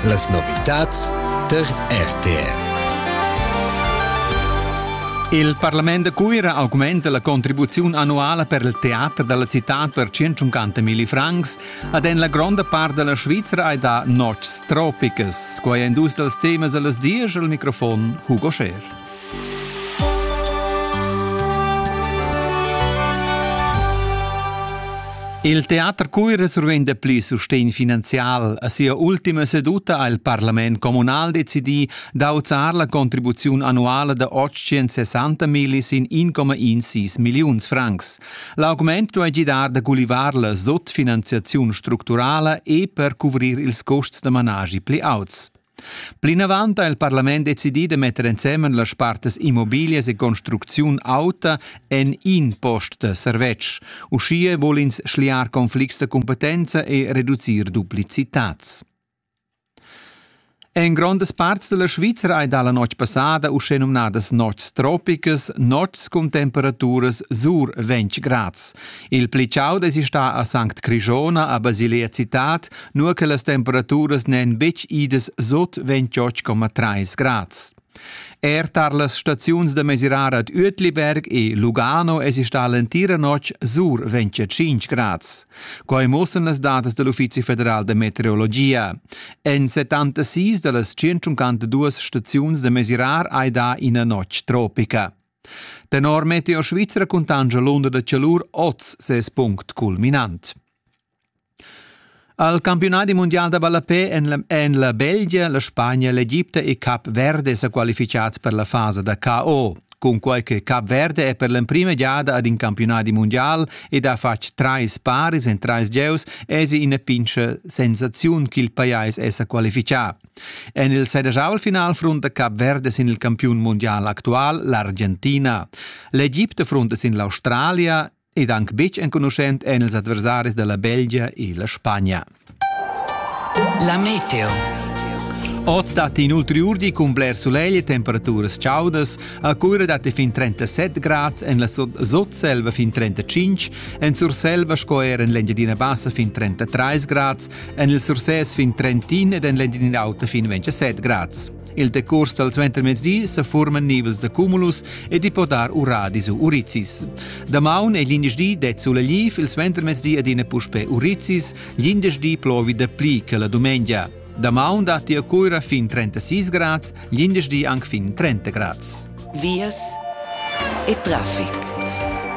Las novitads tar RTR. Il Parlament da Cuira augmenta la contribuziun annuala per il teater dalla citad per 150.000 francs ad en la gronda part della Svizra e da notgs tropicas. Quai è dus dals temas a las dies al microfon Hugo Scher. Il teater Cuira survenda pli sustegn finanzial. A sia ultima seduta ha il parlament communal decidì d'auzar la contribuziun annuala da 860 millis in 1,16 milliuns francs. L'augment duai gidar da gulivar la sotfinanziaziun structurala e per cuvrir ils custs da managi pli auts. Plinavant ha il parlament decidì da metter ensemen las partas immobiglias e construcziun auta en in post da servetsch. Uschia vul ins schliar conflicts da competenza e reducir duplicitads. En grondas parts della Svizzera hai dalla notg passada uschè numnadas notgs tropicas, notgs cun temperaturas sur 20 grads. Il pli chaud es stà a Sanct Crishona a Basilea Cittad, nur che las temperaturas n'èn betg idas sot 28,3 grads. Er tar las staziuns da mesirar ad Uetliberg e Lugano es stà l'entira notg sur 25 grads. Quai mussan las datas da l'Uffizi federal da meteorologia. En 76 da las 152 staziuns da mesirar hai dà ina notg tropica. Tenor Meteo Svizra cuntanscha l'unda da chalur oz ses punct culminant. Al campionadi mundial da ballapè en la, en la Belgia, la Spagna, l'Egipte e Cap Verde sa qualificads per la fasa da KO. Cunquai che Cap Verde è per l'emprima giada ad in campionadi mundial ed ha fatg trais paris en trais gieus, èsi ina pintscha sensaziun ch'il pajais è sa qualifichà. En il sedischau-final frunta Cap Verde sin il campiun mundial actual l'Argentina. L'Egipte frunta sin l'Australia ed anche betg enconuschent en ils adversaris della Belgia e la Spagna. La meteo. Oz datti inoltre urdi cun bler solegl e temperaturas chaudas. A Cuira datti fin 37 grad, en la Sotselva fin 35, en Surselva sco er en l'Engiadina Bassa fin 33 grad, En il Sursès fin Trentin ed en l'Entin in auta fin 27 grads. Il decurs dal suentermezdi sa forman nivels da cumulus e di po dar uradis u urizis. Damaun è l'indeschdi det suleliv, il suentermezdi adina puspe urizis, l'indeschdi plovi da pli che la dumengia. Damaun datti a Cuira fin 36 grads Glindesdi anc fin 30 grads. Vias e traffic.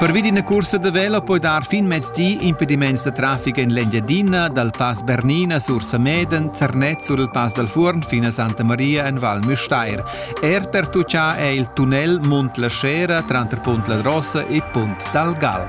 Pervi d'ina cursa da velo puoi dar fin mezdi impediments da traffic en l'Engiadina, dal Pass Bernina sur Sameden, Zernez sur il Pass dal Fuorn fin a Santa Maria en Val Müstair. Er per tuccà è il tunnel Munt la Scera tranter Punt la Drossa e Punt dal Gal.